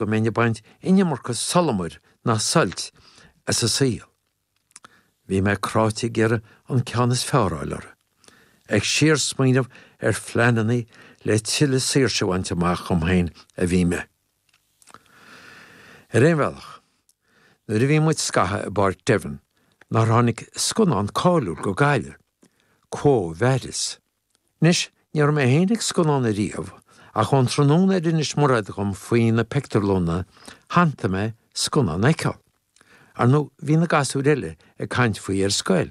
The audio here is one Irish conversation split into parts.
go mbeinn ag baint an iomarca sólamair ná suilt as a saol. Bhí mé cráite ag iarraidh an ceann is fearr a fháil orthu, ag síorsmaoineamh ar phleananna le tuilleadh saoirse a bhaint amach dhom féin a bhí mé. Ar aon bhealach, nuair a bhí muid scatha i bPáirc Devon, nár tháinig scannán cáiliúil go Gaillimh, Quo Vadis? Anois, ní raibh mé féin ag scannán ariamh, ach ón tráthnóna ar inis Mairéad dhom faoi na pictiúrlanna, shantaigh mé scannán a fheiceáil. Ar ndóigh, bhí na gasúir eile ag caint faoi ar scoil.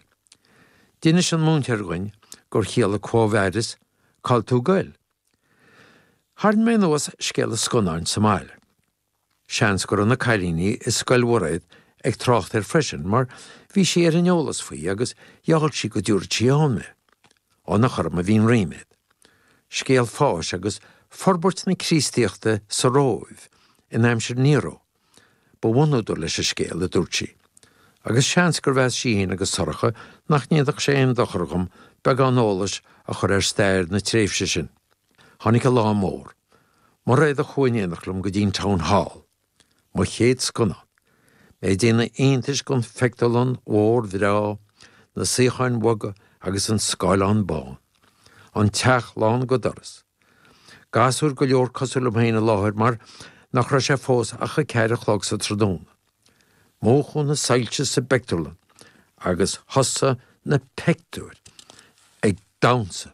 D'inis an múinteoir dhúinn gur chiallaigh Quo Vadis? Cá'l tú ag goil? Tharraing mé anuas scéal an scannáin sa mbaile. Seans go raibh na cailíní i Scoil Mhairéad ag trácht air freisin mar bhí sí ar an eolas faoi agus gheall sí go dtiúrfad sí ann mé, rud a chuir orm an-ríméad. Scéal fáis agus forbairt na Críostaíochta sa Róimh in aimsir Nero ba bhunúdar leis an scéal, a dúirt sí, agus seans gur mheas sí féin agus Sorcha nach ndéanfadh sé aon dochar dhom beagán eolais a chur ar stair na tréimhse sin. Tháinig an lá mór. Mairéad a chuaigh in éineacht liom go dtí'n Town Hall. Mo chéad scannán. Mé ag déanamh iontais den phictiúrlann mhór bhreá, na suíocháin bhoga agus an scáileán bán. An teach lán go doras. Gasúir go leor cosúil liom féin i láthair mar nach raibh sé fós ach a ceathair a chlog sa tráthnóna. Múchadh na soilse sa bpictiúrlann agus thosaigh na pictiúir ag damhnsa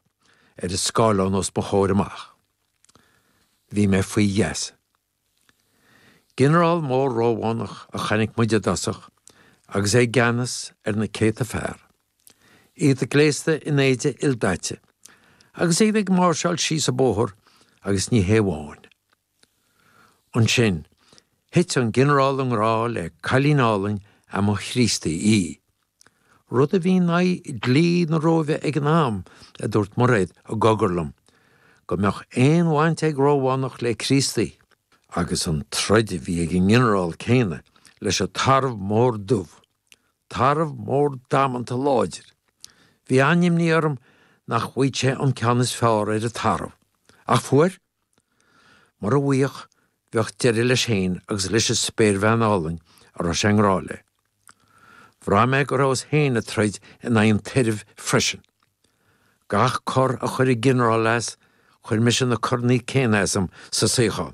ar an scáileán os mo chomhair amach. Bhí mé faoi gheasa. Ginearál mór Rómhánach a chonaic muid i dtosach agus é i gceannas ar na céadta fear, iad gléasta in éide ildaite agus iad ag máirseáil síos an bóthar agus ní hé amháin Ansin, thit an Ginearál i ngrá le cailín álainn a mba Chríostaí í. Rud a bhí in aghaidh dlí na Róimhe ag an am, a dúirt Mairéad i gcogar liom, go mbeadh aon bhaint ag Rómhánach le Críostaí. Agus an troid a bhí ag an nGinearál céanna leis an Tarbh Mór Dubh, tarbh mór damanta láidir. Bhí an-imní orm nach bhfaigheadh sé an ceann is fearr ar an tarbh. Ach fuair! Mura bhfaigheadh, bheadh deireadh leis féin agus leis an spéirbhean álainn a raibh sé i ngrá léi. Bhraith mé go rabhas féin ag troid in aghaidh an tairbh freisin. Gach cor a chuir an ginearál as, chuir mise na coranna céanna asam sa suíochán.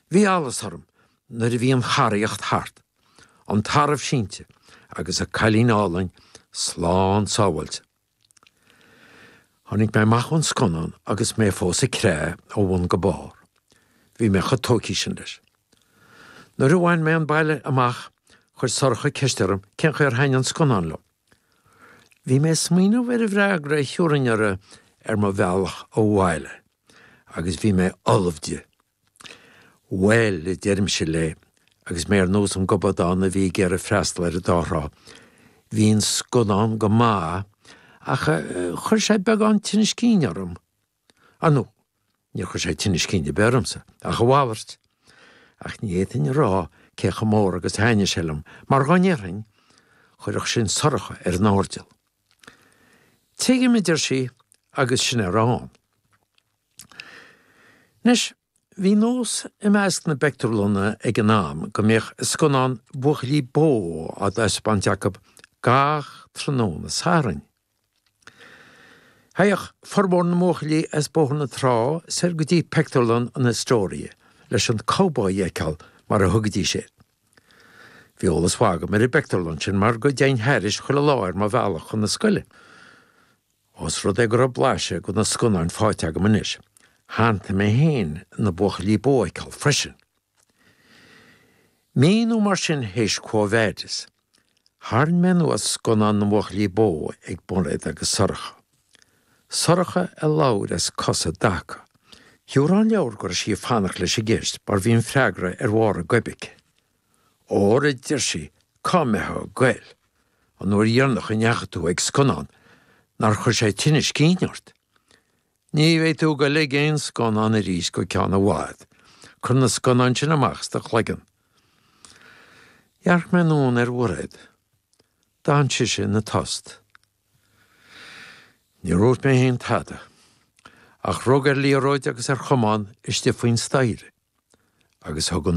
Bhí allas orm nuair a bhí an charraíocht thart, an tarbh sínte agus an cailín álainn slán sábháilte. Tháinig mé amach ón scannán agus mé fós ag creathadh ó bhun go barr. Bhí mé chomh tógtha sin leis. Nuair a bhain mé an baile amach, chuir Sorcha ceist orm cén chaoi ar thaithin an scannán liom. Bhí mé ag smaoineamh ar an bhfreagra a thiúrfainn uirthi ar mo bhealach abhaile, agus bhí mé ullamh di. Bhail, a deirimse léi, agus mé ar nós an gobadán a bhí ag iarraidh freastal ar an dá thrá, bhí an scannán go maith, ach chuir sé beagán tinnis cinn orm. Ar ndóigh, níor chuir sé tinneas cinn ar bith ormsa, ach a mhalairt. Ach ní fhéadfainn a rá cé chomh mór agus a thaitnigh sé liom, mar dhá ndéarfainn, chuirfeadh sin Sorcha ar an airdeall. Tuigim, a deir sí, agus sin é a raibh ann. Anois, bhí nós i measc na bpeictiúrlanna ag an am go mbíodh scannáin buachaillí bó á dtaispeáint acu gach tráthnóna Sathairn. Théadh formhór na mbuachaillí as Bóthar na Trá soir go dtí pictiúrlann an Astoria leis an cowboy a fheiceáil, mar a thugaidís air. Bhí eolas mhaith agam ar an bpictiúrlann sin mar go dtéinn thairis chuile lá ar mo bhealach chun na scoile. Ós rud é go raibh blaiseadh de na scannáin faighte agam anois, shantaigh mé féin na buachaillí bó a fheiceáil freisin. Mí nó mar sin théis Quo Vadis, tharraing mé anuas scannán na mbuachaillí bó ag Mairéad agus Sorcha. Sorcha a labhair as cosa i dtaca. Thiúrfá an leabhar go raibh sí ag fanacht leis an gceist mar bhí an freagra ar bharr a goib aici. Óra a deir sí cá mbeifeá ag goil, an uair dheireanach a ndeachaigh tú ag scannán, nár chuir sé tinneas cinn ort? Ní bheidh tú ag goil ag aon scannán arís go ceann i bhfad, cuir na scannáin sin amach as do chloigeann. Dhearc mé anonn ar Mhairéad. D'fhan sise ina tost. Níor úirt mé fhéin tada, ach rug ar liathróid agus ar chamán istigh faoin staighre, agus thug an